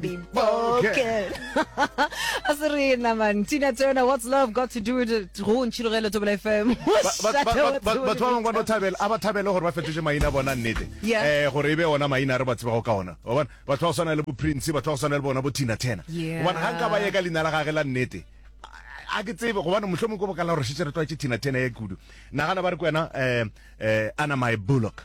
Okay. a se re na man tina turner what's love got to do with it go ntšhilogele tobela fm batho ba bangwe ba no thabela a ba thabele gore ba fetoše maina bona nnete um gore e be ona maina a re ba tsebago ka ona obane batho ba go swana le bo prince batho ba go swana le bona bo tina turner obane ga nka ba ye ka leina la gage la nnete a ke tsebe gobane motlho mongwe ko bokala gore šetse re tlwaetse tina turner ya kudu nagana ba re ko wena um ana my bullock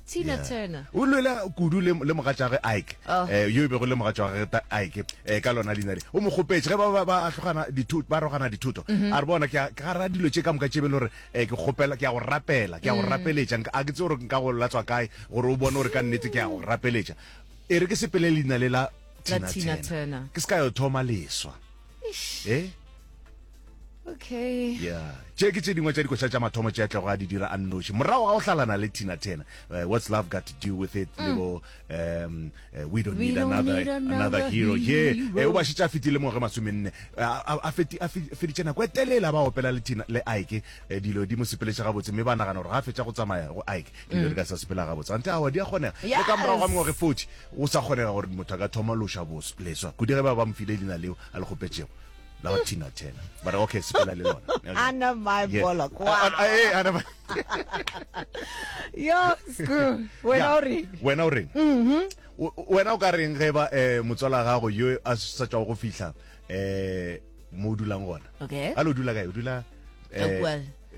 Tina Yeah. Turner. o lwela kudu le, le mogatšage ike Oh. eh, yo e bego le mogatšage ta ike eh, ka lona leina le o mo kgopetše ge ba ba- ba ahlogana dithuto ba rogana dithuto Mhm. a re bona ke a- ke gara dilo tše ka moka tše be le gore eh, ke kgopela ke ya go rapela ke ya go Mm. rapeletša Nka- a ke tse gore nka go latswa kae gore o bone gore ka nnete ke ya go rapeletša e re ke sepele leina le la La Tina Tina Turner. Turner. ke se ka yo thoma leswa e okay yeah tše ke tše dingwe tša dikoša tša mathomo tše atlego a di dira a nnoši morago ga go hlalana le tina tena uh, eh, what's love got to do with it mm. lebo um, uh, we don't, we need, don't another, need another, another hero ye yeah. uh, eh, o ba šetše a fetile mo ge masomenne a feditše nako e telela ba opela le tina le ike uh, dilo di mo sepeletše gabotse mme ba nagana gore ga a fetša go tsamaya go ike dilo mm. di ka sa sepela gabotse ante awa di a kgonega le ka morago ga mengwage forty Go sa kgonega gore motho a ka thoma loša bos, leswa kudu ge ba ba mo file leina leo a le kgopetšego la ba Tina Turner. Ba re, Okay, sepela le lona. Okay. Anna Mae Yes. Pollock. A- a- a- ee, Anna Mae- Yo, sku, wena Ya, o reng? wena o reng O- o- wena o ka reng ge ba eh, motswala gago yo a sa tšwago go fihla eh, mo o dulang gona Okay. a le o dula kae o dula eh, Ka kua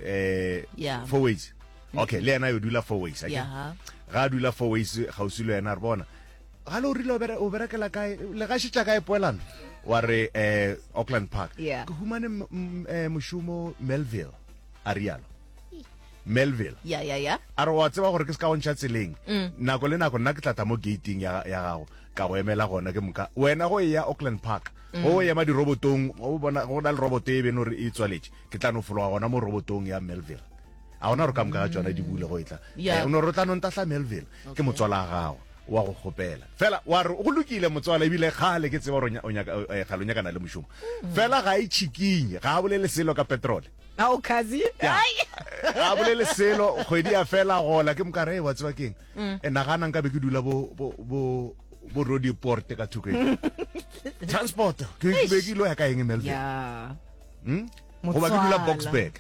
eh yeah. four ways mm. okay le yena yo dula four ways okay? yeah. ga dula four ways gausi le yena re bona ga le o rile o berekela kae le gašetša kae poelano wa re eh auckland park yeah. ke humane eh, mošomo melville a rialo melville ya ya ya a re wa tseba gore ke se ka go ntšha tseleng mm. nako le nako nna ke tlatla mo gating ya gago ka go emela gona ke moka wena go e ya auckland park mm. go ema dirobotong go na le roboto e bene gore e tswaletše ke tla no fologa gona mo robotong ya melville a gona gore ka moka ga tsona di bule go etla Yeah. Eh, o no re o tla no ntahla melville ke Okay. motswala wa gago wa go kgopela fela wa re go lokile motswala ebile kgale ke tseba gore o nya- o nyaka- o- eh, kgale o nyakana le mošomo fela ga e chikinye ga a bolele selo ka petrole Ao kazi. Ya. a bolele selo kgwedi ya fela gola ke mokare wa tseba keng e nagana nka be ke dula bo bo- bo bo rodi porte ka thoko e transport ke ke be ke ilo ya ka eng melville Yeah. hmm? goba ke dula boxburg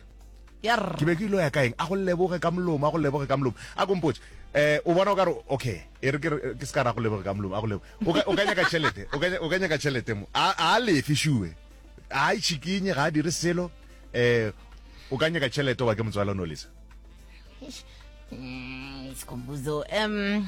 ke be ke ilo ya kaeng a go leboge ka molomo a go leboge ka molomo a kompotse eh o bona o ka re okay e re ke se ka ra go leboge ka molomo a go lebo o ka nyaka tšhelete o ka nyaka tšhelete mo a lefe sure a itšhikinye ga a dire selo eh o ka nyaka tšhelete oba ke motswala o ne o lesa eh, sikhumbuzo um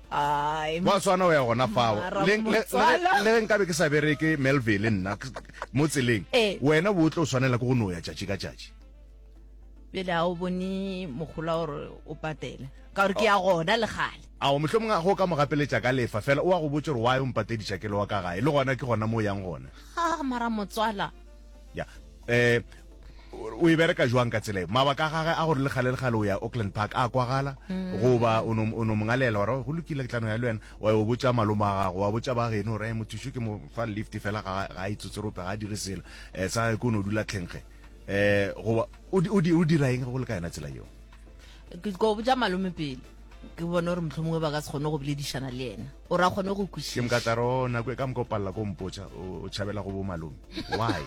Gwa swana o ya gona fao. Le ge nkabe ke sa bereke Melville nna mo tseleng, wena bo tlo swanela ke go no ya tšatši ka tšatši. Bjale a o bone mogola gore o patele ka gore ke ya gona le gale. Ao mohlho mongwe a go ka mo gapeletša ka lefa fela o a go botša gore why o mpatediša ke le wa ka gae le gona ke gona mo o yang gona. Ha mara motswala. ya eh o e bereka jwang ka tsela mabaka a gage a gore le gale le gale o ya auckland park a kwagala mm. goba o no mongalela gore go lokile ke tlano ya le wena wa yo botsa maloma a gago wa botsa ba geno gore mothuso ke mo fa lift fela ga a itsotserope ga a dire selo um sa gage ke o ne o dula tlhenkge um goba o dira eng go le ka yona tsela eo ko botsa malome pele ke bone gore motlho mongwe ba ka se kgone go boledišana le ena o ra kgone go kwešiša ke mka tlaro oh, nako e ka moka o palela ko mpotša o tšhabela go bo malome why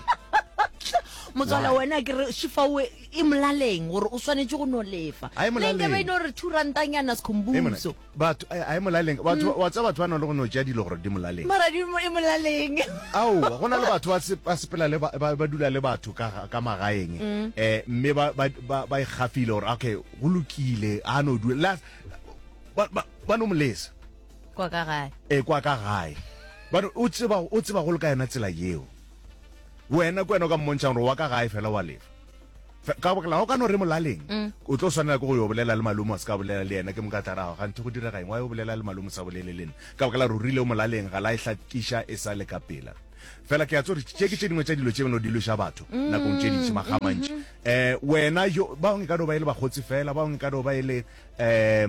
motswala wena ke re shifawe e molaleng gore o swanetse go no lefa lenke ba ino re two rantanyana sekhombuso batho a e molaleng batho mm. wa tsa batho ba no le go no tšea dilo gore di molaleng mara di e molaleng ao go na le batho ba sepela le ba dula le batho ka ka magaeng mm. eh mme ba ba ba ikgafile gore okay go lokile a no dula Ba no mo lesa. Kwa ka gae. E, kwa ka gae. Ba no, o tseba, o tseba go le ka yona tsela yeo. Wena, kwena o ka mmontšha gore wa ka gae fela wa lefa. Fe, ka bakala, o ka no re molaleng. Mm. O tlo swanela ke go yo bolela le malome, wa se ka bolela le yena, ke moka tla rago, ganthe go direga eng, wa yo bolela le malome, sa bolele le nna. Ka bakala gore o rile o molaleng, ga la e hlakiša e sa le ka pela. Fela ke a tso re, tše ke tše dingwe tša dilo tše beno di lweša batho, mm, nakong tše dintši, makga mantši. Mm -hmm. Eh, wena, yo, ba bangwe e ka no ba e le bakgotsi fela, ba bangwe e ka no ba e le, eh,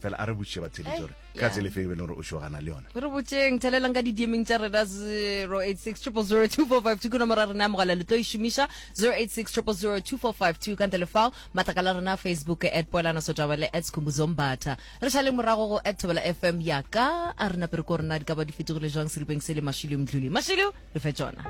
fela a re botšiše ba theletše gore eh, ka tsele fe e be le gore o šogana le yone re botseng thelelang ka didiemeng tša rena 08600242 ke nomoro ya rena ya mogala le tlo e šomiša 08600242 ka ntle lefao matlaka la rena facebook at poelana sotabele at skhumbuzombata re šale morago go at thobela fm ya ka a re napere ko rena di ka ba di fetogile jwang seripeng se le mashilo mdluli mashilo re fe tsona